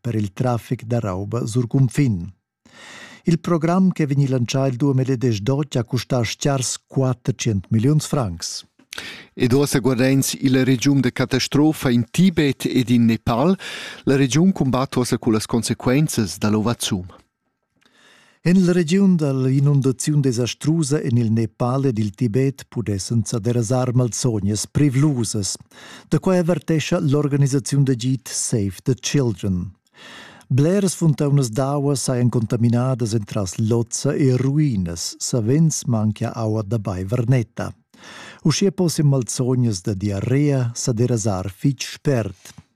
per il traffic da rauba sur cunfin. Il program che vegni lancià il 2018 ha custà stars 400 milliuns francs. Ed ossa guardains illa regiun de catastrofa in Tibet ed in Nepal, la regiun combatta ossa cu las consequenzas da l'ovazum. En la regiun dall'inundaziun desastrusa en il Nepal ed il Tibet pudessan sa derasar malsognas privlusas. Da quai avertescha l'organisaziun d'agid Save the Children. Bleras funtaunas d'aua sajan contaminadas entras lozza e ruinas, savens manchia aua da baiver netta. Uschia possian malsognas da diarrea sa derasar fitg spert.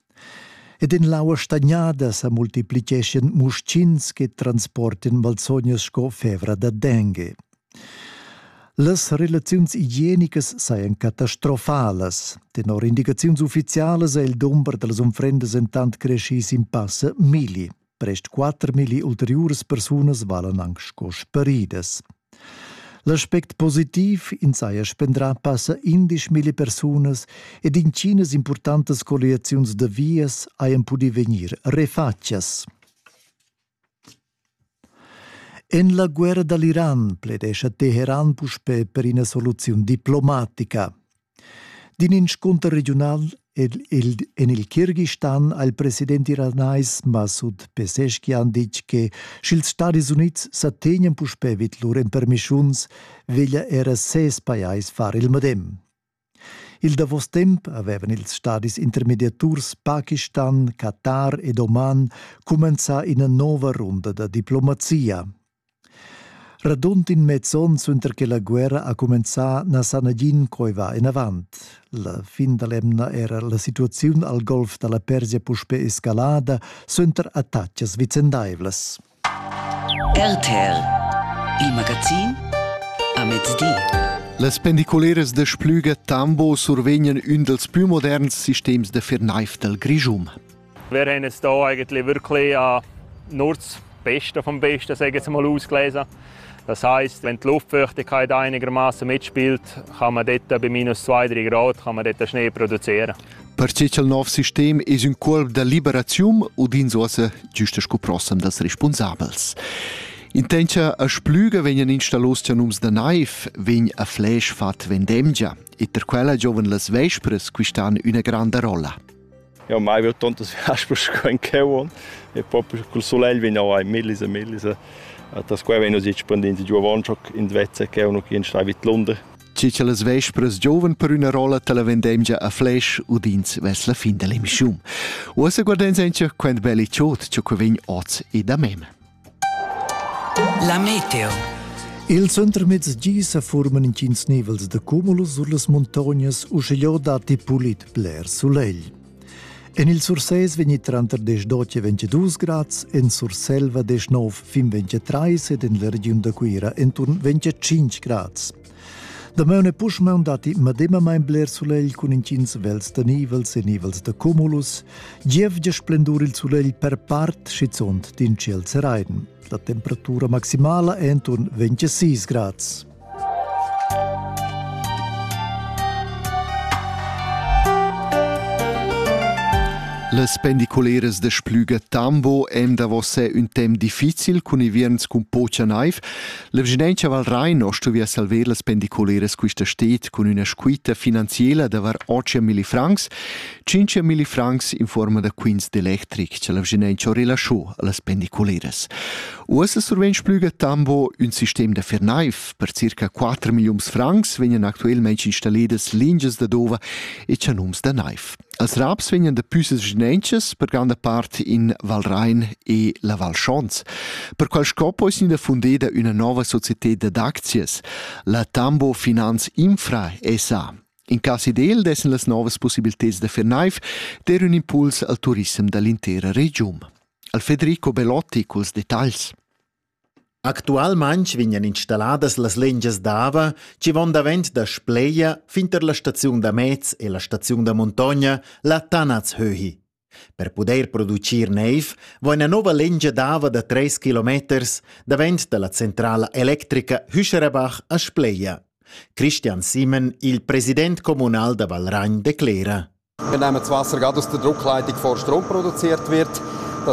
Ed in l'aua stagnada sa multipliceschien muschins che transportin malsognas sco fevra da dengue. Las relaziuns igienicas sajan catastrofalas. Tenor indicaziuns uffizialas è il dumber da las unfrendas entant creschì sin passa milli. Prest 4.000 ulteriuras persunas valan anche sco sparidas. L'aspect positiv in saja spendrà passa 11.000 persunas ed intginas importantas colliaziuns da vias hajan pudì vegnir refatgas. En la guerra da l'Iran pledescha Teheran puspè per ina soluziun diplomatica. D'in inscunter regiunal en il Kirgistan ha il president iranais Masud Pezeskian ditg che sch'ils Stadis Unids sa tegnan puspè vid lur empermischuns, veglia era ses pajais far il medem. Il davos temp avevan ils stadis intermediaturs Pakistan, Qatar ed Oman cumenzà ina nova runda da diplomazia. Radund in mez onn suenter che la guerra ha cumenzà na sa nagin co va enavant. La fin da l'emna era la situaziun al golf da la Persia puspè escalada suenter attacas vicendaivlas. RTL, il magazin a mezdi. Las pendiculeras da Splüga Tambo survegnan ün dels plü moderns sistems da firnaif dal Grischun. Wir haben es hier eigentlich wirklich äh, nur das Beste vom Besten, sage ich jetzt mal, ausgelesen. Das heisst, wenn die Luftfeuchtigkeit einigermaßen mitspielt, kann man dort bei minus 2-3 Grad kann man dort Schnee produzieren. Per che il nuovo sistema è un corpo di liberazione o din uossa giusto sco prossem das responsabels. Intentia a splüga vegnan installos nums da naiv, vegn a flash fat vendemgia e per quella giovan las vespras quistan üna granda rolla. Jau mai veu tontas viaspers sco in cheu e propi cul sulegl vegn jau millis e millis a tas quai vegn nus expandins giu avon schoc in vezza cheu nu ch'in stai vid Lunder. Che che las vespras giovan per üna rolla ta la vendemgia a flash udins ves la fin dell'emissiun. Uossa guardens encha quant belli chod cho que vegn oz e da mem. La meteo. Ils untermezs gi sa forman intgins nivels da cumulus sur las muntognas, uschigliò datti pulit bler sulegl. En il Sursés vegni tranter 18 e 22 grads, en Surselva 19 fin 23 ed en la regiun da Cuira enturn 25 grads. Damaun e puschmaun datti medemamain bler sulegl cun intgins vels da nivels e nivels da cumulus. Gievgia splendur il sulegl per part, schizunt d'in ciel seraiden. La temperatura maximala è enturn 26 grads. Las pendiculeras de Splüga Tambo èm davosè un temp difficil cun ivierns cun pocha naiv, La vigilenza Val Rhein ho stuviu salver las pendiculeras quista stet cun üna squita finanziela da var 8 mili francs, 5 mili francs in forma da quints d'electric, cha la vigilenza ho relascho allas pendiculeras. Uossa survegn Splüga Tambo ün sistem da fernaif per circa 4 milliuns francs vegnan actuelmaing installedas lingias da dova e chanuns da naif. Als raps vegnan daplü sesgnentschas per granda part in Val Rain e la Val Schons. Per quel scop ais gnida fundeda üna nouva societed dad aczias, la Tambo Finanz Infra SA. In cas ideal dessan las novas possibilteds da fer naiv der ün impuls al turissem da l'intera regiun. Al Federico Belotti culs detagls. Actualmaing vegnan installadas las lingias d'ava chi von davent da Spleia fin tar la staziun da mez e la staziun da muntogna la Tanazhöhi. Per pudair producir neiv vo üna nouva lingia d'ava da tres kilometers davent da la centrala electrica Hüscherebach a Spleia. Christian Simon, il president comunal da Valragn, declera. Wir nehmen das Wasser gerade aus der Druckleitung vor Strom produziert wird. Das